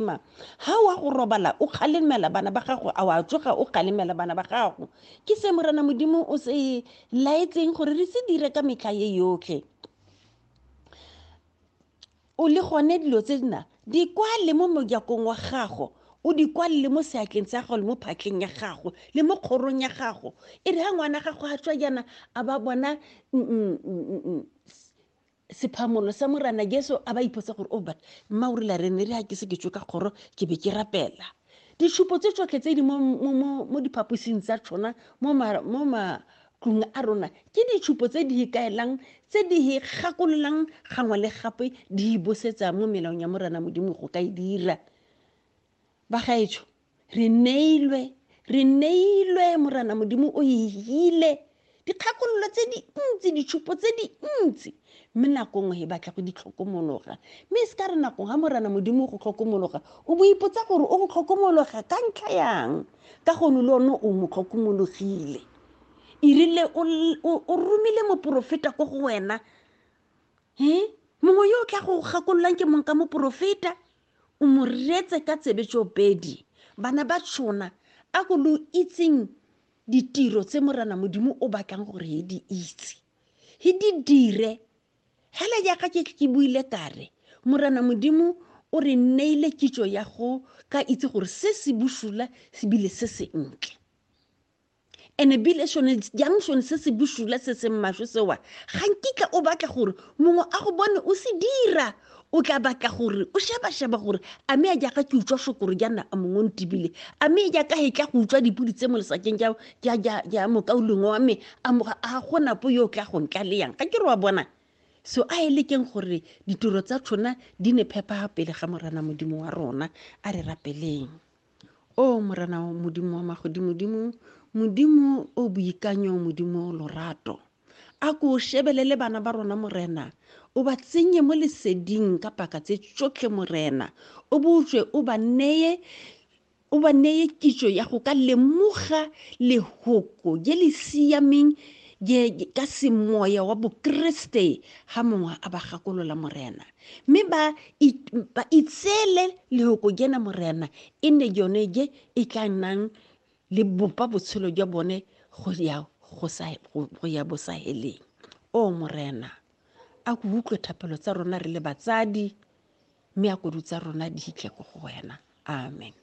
ma ha wa go robala o kgalemela bana ba gago a wa tsoga o kgalemela bana ba gago ke se morena modimo o se laetseng gore re se dire ka metlha ye yotlhe o le gone dilo tse dina di kwale mo mojakong wa gago o di kwalele mo seatleng sa gago le mo phatleng ya gago le mo kgorong ya gago e re ga ngwana gago a tswa jaana a ba bona mm, mm, mm, sephamolo sa morana jesu a ba ipotsa gore o but mma o rile re ne re ga ke se ke tswe ka kgoro ke be ke rapela ditšhupo tse tsotlhe tse di mo, mo, mo, mo diphaposing tsa tshona mo ma- mo matlong a rona ke ditšhupo tse di ikaelang tse di hi gakololang gangwe le gape di hi bosetsa mo melaong ya morana modimo go ka e dira bagaetsho re neilwe re neilwe morana modimo o ile dikgakololo tse dintsi ditšhupo tse dintsi mme nako nngwe e batla go di tlhokomologa mme e se ka re nako ga morana modimo o go tlhokomologa o bo ipotsa gore o go tlhokomologa ka ntlha yang ka gone le one o mo tlhokomologile e rile o romile moporofeta ko go wena e mongwe yo o tla go gakololang ke mong ka moporofeta O mo reetse ka tsebe tšoopedi, bana ba tšona, a ko lo itseng ditiro tse Morena Modimo o batlang gore he di itse. He di dire. Hela jaaka ke ke buile kare, Morena Modimo o re neile kitso ya go ka itse gore se se busula sebile se sentle. and ebile sone jang sone se se bosula se seng maswe sewa ga nkitla o batla gore mongwe a go bone o se dira o tla batla gore o sheba-sheba gore a me a jaaka ke utswa sokoro jaana a mongwe o ntebile a me jaaka e tla go utswa dipodi tse mo lesakeng ja mokauleng wa me a gonapo yo o tla go ntla le yang ga ke re wa bona so a e lekeng gore ditiro tsa tshona di ne phepha pele ga morana modimo wa rona a re rapeleng o morena modimo wa magodimodimo modimo o boikanyo modimo lorato a ko shebelele bana ba rona morena o ba tsenye mo leseding ka paka tse tsotlhe morena o botswe o ba neye o ba neye kitso ya go ka lemoga lehoko je le siameng ka semoya wa bokriste ga mongwe a ba gakolola morena mme ba itseele lehoko jena morena e nne jone je e tla nnang le bopa botshelo jwa bone go ya go ya bosaheleng o morena a ko utlwe thapelo tsa rona re le batsadi mme a kodu tsa rona di hitlhe ko go wena amen